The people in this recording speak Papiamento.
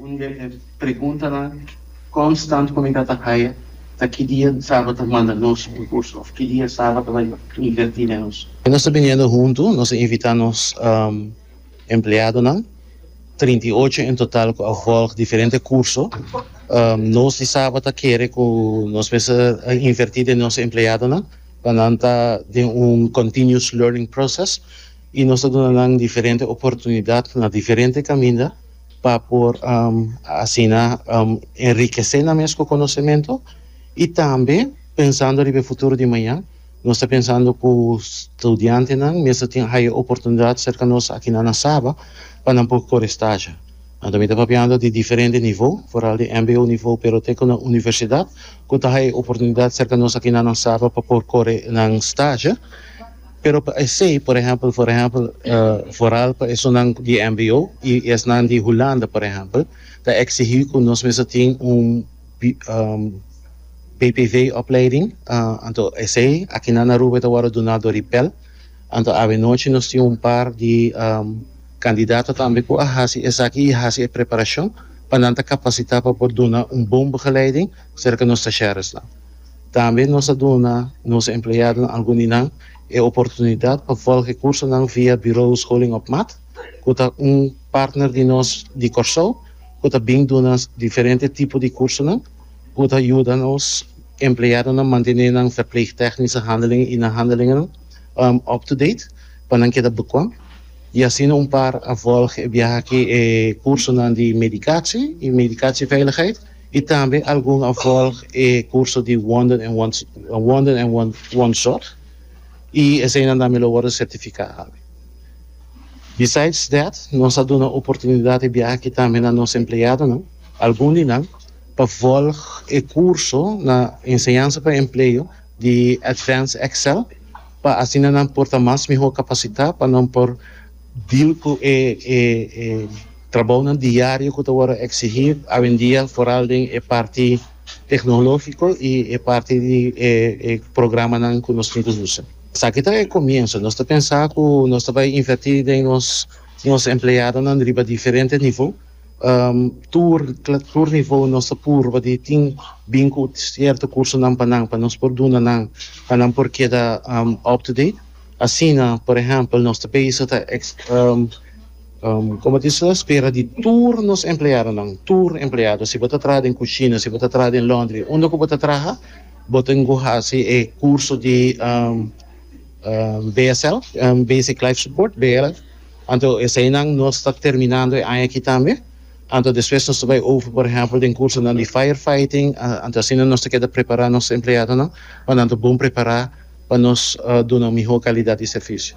Un di e preguntanan konstant ku mi ta ta haya ta ki dia Saba ta manda nos un kurso òf ki dia Saba ta invertí den nos. Ku nos ta biniendo huntu, nos a invitá nos empleadonan, trinta i ocho en total ku a vòlg diferente kurso. Nos di Saba ta kere ku nos mester a invertí den nos empleadonan pa nan ta den un continuous learning process i nos ta duna nan diferente oportunidat na diferente kaminda. pa por asina enrikesé nan mes ku konosementu i tambe pensando riba e futuro di maña nos ta pensando ku studiantenan mester tin haya oportunidat serka nos akinan na Saba pa nan por kore stashi anto mi ta papiando di diferente nivo foral di mbo nivo pero te ku na universidat ku ta haya oportunidat serka nos akinan na Saba pa por kore nan stashi. Pero pa esey, por ehempel, for ehempel, foral pa esunnan di mbo y esnan di Hulanda, por ehempel, ta exigí cu nos mes ta tin un BPV-opleiding, anto esey akinan na Aruba e ta worde duná dor di pel. Anto abenochi nos tin un par di candidato tambe cu a haci esaki y haci e preparacion pa nan ta capacitá pa por duna un bon begeleiding cerca nos stagiaresnan. Tambe nos a duna nos empleadonan alguninan e oportunidat pa volg e kursonan via Bureau Scholing op Maat, ku ta un partner di nos di Kòrsou ku ta bin duna diferente tipo di kursonan ku ta yuda nos empleadonan mantené nan verpleegtechnische handelingen i nan handelingen up-to-date pa nan keda bekwam. I asina un par a volg e biaha aki e kursonan di Medikatie i Medikatieveiligheid. I tambe algun a volg e kurso di Wonder en Wonder en Wonzorg i eseinan tambe lo worde sertifiká algi. Besides that, nos a duna oportunidat e biaha aki tambe na nos empleadonan, algun di nan, pa volg e kurso na Enseñansa pa Empleo di Advanced Excel pa asina nan por ta mas mihó kapasitá pa nan por deal ku e Trabounan diario cu ta worde exigi awendia foral den e parti tecnologico y e parti di e programanan cu nos tin cu usa. Esaki ta e comienzo. Nos ta pensa cu nos ta bay inverti den nos nos empleadonan riba diferente niveau. Tur tur niveau nos ta purba di tin bin cu cierto cursonan pa nan pa nos por duna nan pa nan por keda up to date. Asina, por ehempel, nos ta bezig ta ex. Como tin so espera di tur nos empleadonan, tur empleado, si bo ta traha den cushina, si bo ta traha den laundry, unda cu bo ta traha, bo tin cu haci e curso di BSL, Basic Life Support, BLS. Anto eseinan nos ta terminando e aña aki tambe. Anto despues nos ta bay over, por ehempel, den cursonan di fire fighting. Anto asina nos ta keda prepara nos empleadonan, pa nan ta bon prepara pa nos dunan miho calidad di servicio.